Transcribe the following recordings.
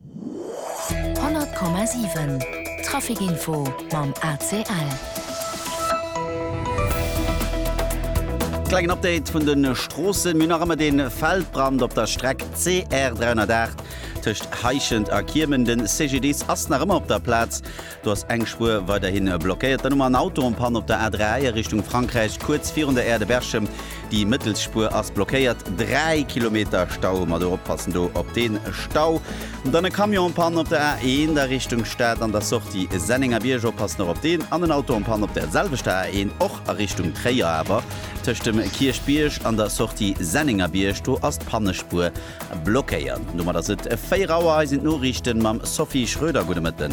100,7 Trafic Info mam ACL. Klengen Update vun den Stroossen. Mir hunn nach ëmmer den Feldbrand op der Streck CR 308 tëscht Heischent a Kiemen. Den CGDIS ass nach ëmmer op der Plaz. Do ass eng Spuer weiderhi blockéiert. Dann hu mer en Autoenpanne op der A3 a Richtung Frankräich, kuerz virun der Aire de Berchem. Déi mëttelst Spuer ass blockéiert. Dräi Kilometer Stau hu mer do. Oppassen do op dee Stau. Dann e Camion en Panne op der A1 a Richtung Stad an der Sortie Sennengerbierg. Oppassen och op deen. An en Auto en Panne op der selwechter A1, och a Richtung Tréier, awer tëscht dem Kierchbierg an der Sortie Sennengerbierg. Do ass d'Pannespuer. Blockéiert. Domat ass et 4 Auer. Hei sinn d'Noriichten mam Sophie Schröder. Gudde Mëtten.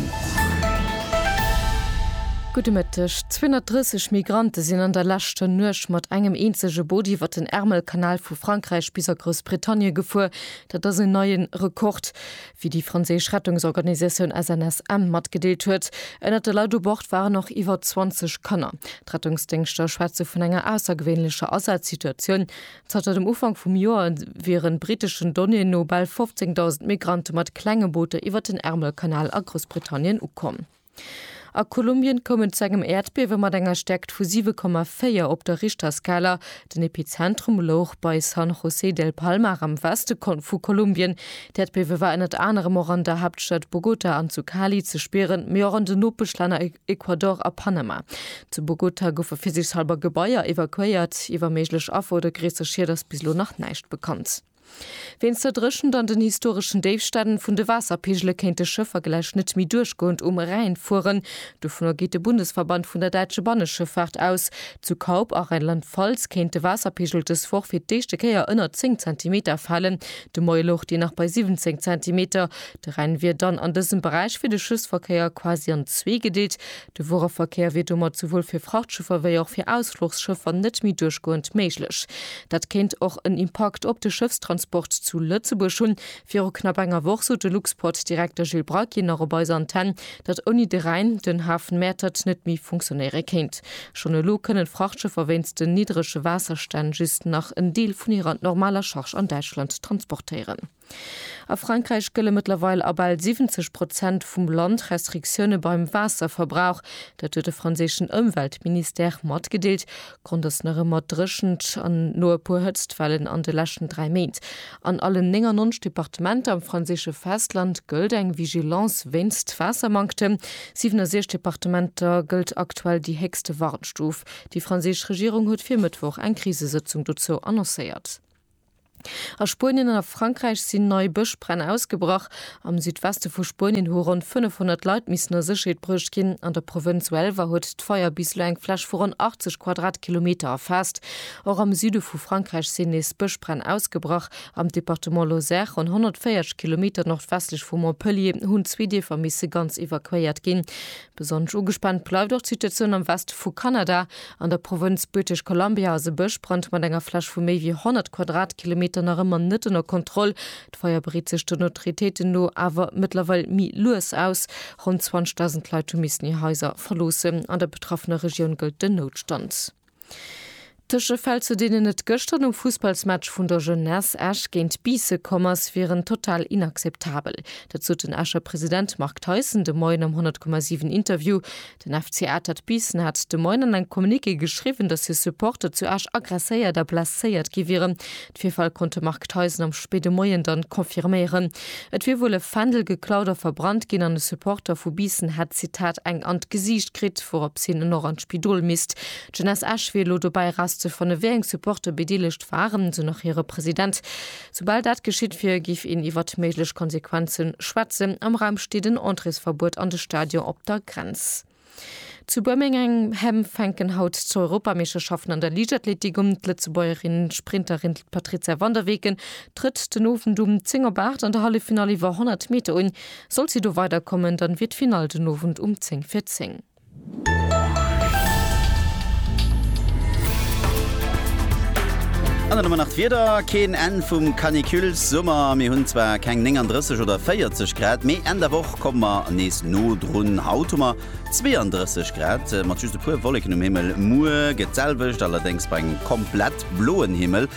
Gudde Mëtteg. 230 Migrante sinn an der leschter Nuecht mat engem eenzege Boot iwwert den Ärmelkanal vu Frankräich bis a Groussbritannie gefuer. Dat ass en neie Rekord, wéi déi franséisch Rettungsorganisatioun SNSM matgedeelt huet. Ënnert de Leit u Bord waren och iwwer 20 Kanner. D'Rettungsdéngschter schwätze vun enger aussergewéinlecher Asazsituatioun. Zanter dem Ufank vum Joer wieren briteschen Donnéeën no bal 15.000 Migrante mat klenge Booter iwwert den Ärmelkanal a Groussbritannien ukomm. A Kolumbien koum et zu engem Äerdbiewe mat enger Stäerkt vu 7,4 op der Richterskala. Den Epizentrum louch bei San José del Palmar am Weste vu Kolumbien. D'Äerdbiewe war ënnert anerem och an der Haaptstad Bogota an zu Cali ze spieren, mee och an den Nopeschlänner Ecuador a Panama. Zu Bogota goufe virsiichshalber Gebaier evakuéiert. Iwwer méiglech Affer oder gréisser Schied ass bis elo nach näischt bekannt. Wéinst der Dréchent an den historeschen Déifstänn vun de Waasserpeegele kéinte Schëffer gläich net méi duerchgoend um Rhäin fueren. Dovunner geet de Bundesverband vun der däitsche Banneschëffaart aus. Zu Kaup a Rheinland-Pfalz kéint de Waasserpeegel dës Woch fir d'éischte Kéier ënner 10 Zentimeter falen. De Moie louch deen nach bei 17 Zentimeter. De Rhäin wier dann an dësem Beräich fir de Schëffsverkéier quasi an zwee gedeelt. De Wuereverkéier wier domat souwuel fir Frachtschëffer wéi och fir Ausfluchsschëffer net méi duerchgoend méiglech. Dat kéint och en Impakt op de Schëffstransport zu Lëtzebuerg hunn. Viru knapp enger Woch sot de Luxport-Direkter Gilles Bracky nach op eiser Antenne, datt ouni de Rhäin den Hafen Mäertert net méi funktionéiere kéint. Schonn elo kënnen d'Frachtschëffer wéinst den niddrege Waasserstänn just nach en Deel vun hirer normaler Charge an Däitschland transportéieren. A Frankräich gëlle mëttlerweil a bal 70 Prozent vum Land Restriktioune beim Waasserverbrauch. Dat huet de franséischen Ëmweltministère matgedeelt, Grond ass nach ëmmer d'Dréchent an no e puer Hëtztwellen an de leschten dräi Méint. An allen 99 Departementer am franséische Festland gëllt eng Vigilance wéinst Waassermanktem. 67 Departementer gëllt aktuell déi héchste Warnstuf. Déi franséisch Regierung huet fir Mëttwoch eng Krisesëtzung dozou annoncéiert. A Spuenien an a Frankräich sinn nei Bëschbränn ausgebrach. Am Südweste vu Spuenien hu ronn 500 Leit missen a Sécherheet bruecht ginn. An der Provënz Huelva huet d'Feier bis elo eng Fläch vu ronn 80 Quadratkilometer erfaasst. Och am Süde vu Frankräich sinn nees Bëschbränn ausgebrach. Am Departement Lozère, ronn 140 Kilometer nordwestlech vu Montpellier, hunn zwee Dierfer misse ganz evakuéiert ginn. Besonnesch ugespaant bleift och d'Situatioun am Weste vu Kanada. An der Provënz British Columbia ass e Bëschbrand mat enger Fläch vu méi wéi 100 Quadratkilometer nach ëmmer net ënner Kontroll. D'Feier breet sech den Autoritéiten no awer mëttlerweil méi lues aus. Ronn 20.000 Leit hu missen hir Haiser verloossen. An der betraffener Regioun gëllt den Noutstand. Tëschefäll, zu deenen et gëschter nom Fussballsmatch vun der Jeunesse Esch géint Biisse komm ass, wieren total inakzeptabel. Dat sot den Escher President Marc Theisen de Moien am 100,7 Interview. Den FC Atert Biissen hat de Moien an engem Communiqué geschriwwen, datt hir Supporter zu Esch aggresséiert a blesséiert gi wieren. D'Virfäll konnt de Marc Theisen am spéide Moien dann confirméieren. Et wier wuel e Fändel geklaut a verbrannt ginn an e Supporter vu Biissen hätt, Zitat, eng an d'Gesiicht kritt, wouraps hien en och an d'Spidol misst. D'Jeunesse Esch wier elo dobäi erauszefannen, wéi eng Supporter bedeelegt waren, esou nach hire President. Soubal dat geschitt wier, géif een iwwert méiglech Konsequenze schwätzen. Am Raum steet en Entréesverbuet an de Stadion op der Grenz. Zu Birmingham fänken haut d'Europameeschterschaften an der Liichtathletik un. D'Lëtzebuergerin Sprinterin Patrizia van der Weken trëtt den Owend um 10 op 8 an der Halleffinall iwwer 100 Meter un. Sollt si do weider kommen, dann wier d'Finall den Owend um 10 fir 10. An dann hu mer nach d'Wieder, keen Enn vum Canicule-Summer. Mir hunn zwar keng 39 oder 40 Grad, mee Enn der Woch. komme mer nees no drun. Haut hu mer 32 Grad mat just e puer Wolleken um Himmel. Muer gëtt d'selwecht, allerdéngs bei engem komplett bloen Himmel.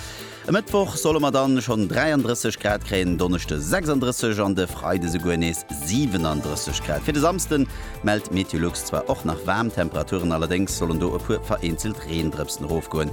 E Mëttwoch solle mer dann schonn 33 Grad kréien, en Donneschde 36 an de Freide souguer nees 37 Grad. Fir de Samsde mellt Meteolux zwar och nach waarm Temperaturen, allerdéngs sollen do e puer vereenzelt Reendrëpsen erofgoen.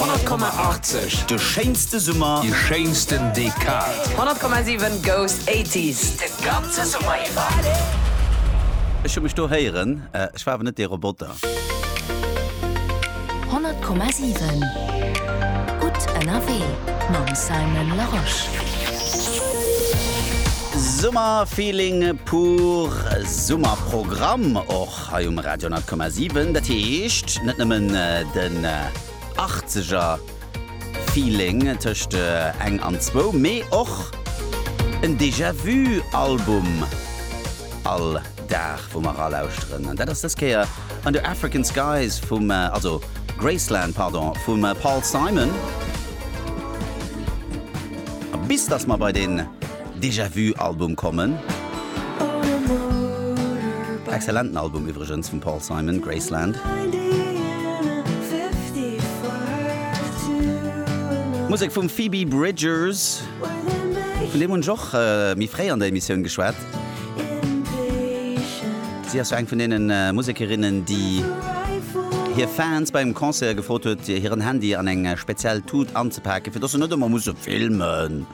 100,80 De schéinste Summer, déi schéinsten Dekad. 100,7 Goes 80s de ganze Summer iwwer. Ech hu mech do héieren, ech war awer net dee Roboter. 100,7 Gutt ënnerwee mam Simon Larosche. Summerfeeling pur, Summerprogramm och. hei um Radio 100,7. Dat heescht net nëmmen den achtzeger Feeling tëscht eng an zwou, mee och en Déjà Vu Album all Dag wou mer eralauschteren. An dat ass dës Kéier Under African Skies vum, also Graceland, pardon, vum Paul Simon. A bis datt mer bei den. Déjà Vu Album kommen. Excellenten Album iwwregens vum Paul Simon, Graceland. Musek vum Phoebe Bridgers, vun deem hunn ech och méi fréi an der Emissioun geschwat. Si ass jo eng vun deene Musekerinnen, déi hir Fans bei engem Concert gefrot huet, hiren Handy an eng speziell Tut anzepake fir dass se net ëmmer musse filmen.